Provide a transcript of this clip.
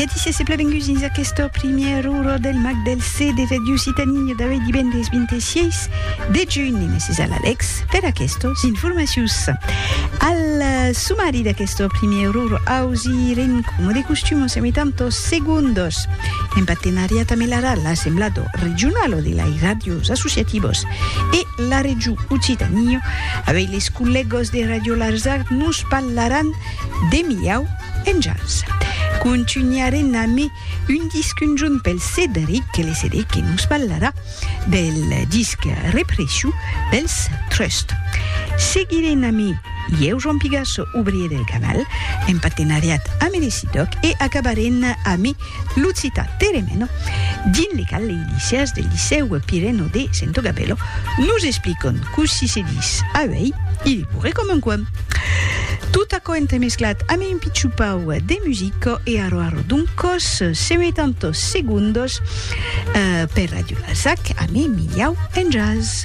E disies e plevenguts dins aquesta primièr ora del Mag del CD de Ràdio Occitanie d'avui divendres 26 de junh. E mèsi a l'Alex per aquestos informacions. Al sumari d'aquesta primièr ora ausi ren coma de costum en semitantos segundos en partenariat amb l'ARA, l'Assemblado Regionalo de lai Ràdios Associativos e la Regió Occitanie. Avui les collègos de Ràdio Larzac nos parlaràn de Miau Enjals. Contunharem amé un disc un jorn pel Cedric que le Cedric que nos ballarà del disc Repressiu dels Trust. Seguirem amé Ieu Joan Pigasso, obrier del canal, en partenariat amé le Cidoc e acabarem amé Lo citat Teremeno, dins le cal lei liceas del Licèu Pireno de Sento Gabello nos explican cossí se dis auèi, i de pure com un coin. Tot aquò entremesclat ame un pichou pau de musica e aro aro doncos semetantos segundos per Radio Larzac ame Miliau en Jazz.